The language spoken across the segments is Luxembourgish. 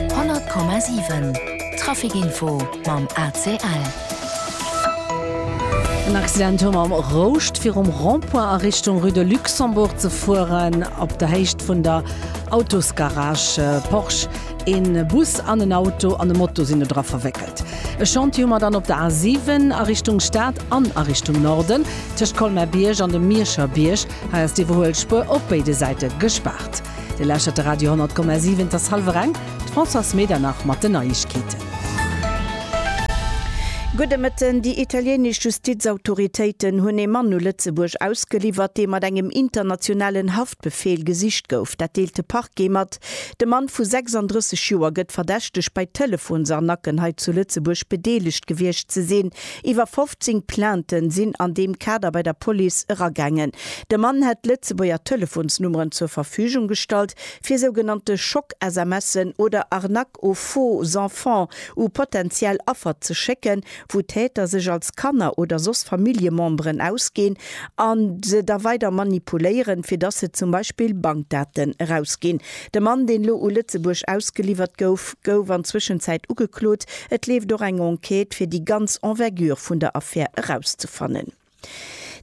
100,7 Trafic Info mam ACL. En Accident hu mam Rouscht virum Rond-point a Richtung Rue de Luxembourg ze fueren, op der Héicht vun der Autosgarage Porsche. Een Bus an en Auto an e Moto sinn dodra verwéckelt. E Chantier hu mer dann op der A7 a Richtung Stad an a Richtung Norden, tëscht Colmer-Bierg an dem Mierscher Bierg. Hei ass d'iwwerhuel Spuer op béide Säite gespaart. Dir lauschtert de Radio 10,7, et ass hallwer eng, d'Françoise Medernach mat den Neiegkeeten. Gudde Mëtten. Déi italienesch Justizautoritéiten hunn ee Mann u Lëtzebuerg ausgeliwwert, dee mat engem internationalen Haftbefeel gesicht gouf. Dat deelt de Parquet mat. De Mann vu 36 Joer gëtt verdächtegt, bei Telefonsarnacken hei zu Lëtzebuerg bedeelegt gewiescht ze sinn. Iwwer 15 Plainte sinn an deem Kader bei der Police eragaangen. De Mann hätt Lëtzebuerger Telefonsnummeren zur Verfügung gestallt, fir sougenannte Schock-SMSen oder Arnaques aux faux enfants u potentiell Affer ze schécken, wou d'Täter sech als Kanner oder soss Familljememberen ausginn a se da weider manipuléieren, fir dass se zum Beispill Bankdaten erausginn. De Mann, deen lo u Lëtzebuerg ausgeliwwert gouf, gouf an Zwëschenzäit ugeklot. Et leeft och eng Enquête, fir déi ganz Envergure vun der Affär erauszefannen.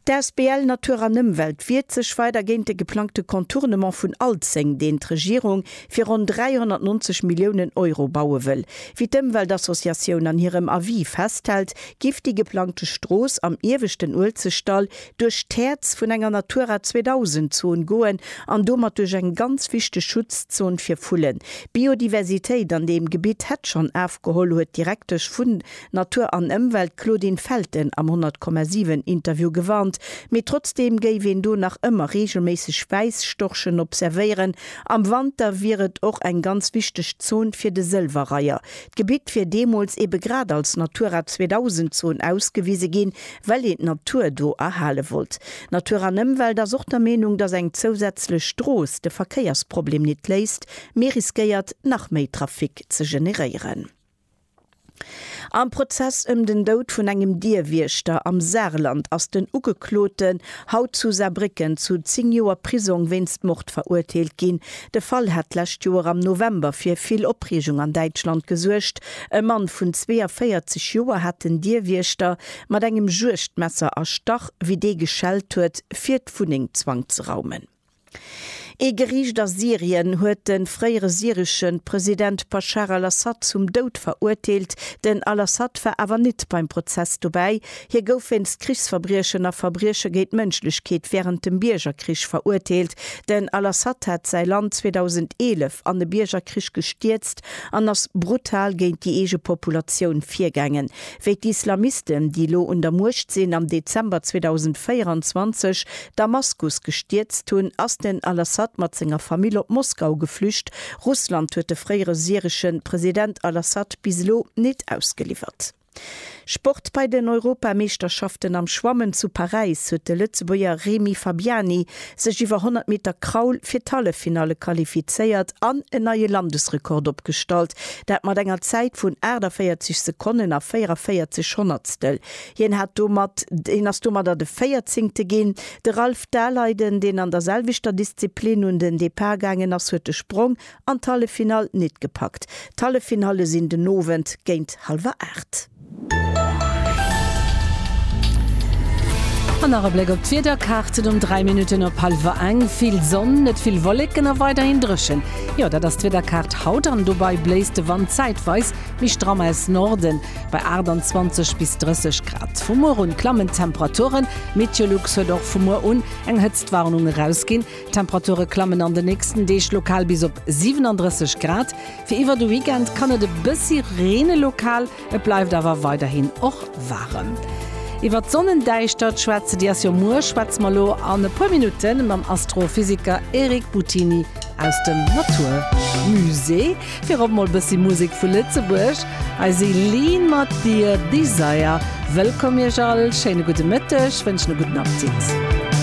D'Asbl Natur an Ëmwelt wiert sech weider géint de geplangte Contournement vun Alzeng, deen d'Regierung fir ronn 390 Milliounen Euro baue wëll. Wéi d'Ëmweltassociatioun an hirem Avis festhält, giff déi geplangte Strooss am ieweschten Uelzechtdall, duerch d'Häerz vun enger Natura 2000 Zon goen an domat duerch eng ganz wichteg Schutzzon fir Vullen. D'Biodiversitéit an deem Gebitt hätt schonn afgeholl, huet d'Direktesch vun Natur an Ëmwelt Claudine Felten am 100,7 Interview gewarnt. Mee trotzdeem géif een do nach ëmmer reegelméisseg Wäisstorchen observéieren. Am Wanter wier et och eng ganz wichteg Zon fir de Sëlwerreiher. D'Gebitt wier deemools ebe grad als Natura 2000 Zon ausgewise ginn, well een d'Natur do erhale wollt. Natur an Ëmwelt ass och der Meenung, datt eng zousätzlech Strooss de Verkéiersproblem nit léist, mee riskéiert nach méi Trafic ze generéieren. Am Prozess ëm den Doud vun engem Dierwiechter am Saarland ass den Ugekloten haut zu Saarbrécken zu 10 Joer Prisong wéinst Mord verurteelt ginn. De Fall hat d'lescht Joer am November fir vill Opreegung an Däitschland gesuergt. E Mann vun 42 Joer hat den Dierwiechter mat engem Juegdmesser erstach, wéi dee geschellt huet, fir d'Wunneng zwangzeraumen. Ee Geriicht a Syrien huet de fréiere syresche President Baschar al-Assad zum Doud verurteelt. Den al-Assad war awer nit beim Prozess dobäi. Hie gouf wéinst Krichsverbriechen a Verbrieche géint d'Mënschlechkeet wärend dem Biergerkrich verurteelt. Den al-Assad hat säi Land 2011 an e Biergerkrich gestierzt an ass brutal géint déi eege Populatioun virgaangen. wéi d'Islamisten, déi elo un der Muecht sinn, am Dezember 2024 Damaskus gestierzt hunn, ass den al-Assad mat senger Famill op Moskau geflücht. Russland huet de fréiere syresche President al-Assad bis elo nit ausgeliwwert. Sport Bei den Europameeschterschaften am Schwammen zu Paräis huet de Lëtzebuerger Remi Fabiani sech iwwer 100 Meter Kraul fir d'Halleffinalle qualifizéiert an en neie Landesrekord opgestallt, dat mat enger Zäit vun 48 Sekonnen a 44 Honnertstel. Hien hat domat hien ass domadder de Véierzéngte ginn. De Ralph Daleiden, deen an der selwechter Disziplin un den Depart gaangen ass, huet de Sprong an d'Halleffinall nit gepackt. D'Halleffinalle sinn den Owend géint hallwer 8. An nach e Bléck op d'Wiederkaarten um 3 Minutten op hallwer eng. Vill Sonn, net vill Wolleken a weiderhin dréchen. Jo, dat ass d'Wiederkaart haut an dobei bléist de Wand zäitweis méi stramm aus Norden bei 28 bis 30 Grad. Vu muer un klammen d'Temperaturen. Meteolux huet och vu muer un eng Hëtztwarnung erausginn. D'Temperature klammen an de nächsten Deeg lokal bis op 37 Grad. Fir iwwer de Weekend kann et e bëssi reene lokal, et bleift awer weiderhin och waarem. Iwwer d'Sonnendäischtert schwätze Dir ass jo muer, schwätze mer elo an e puer Minutte mam Astrophysiker Eric Buttini aus dem Natur Musée. Virop emol e bëssi Musek vu Lëtzebuerg, hei si Lean mat Dear Desire. Wëllkomm Iech all, schéine gudde Mëtteg, wënschen e gudden Appetit.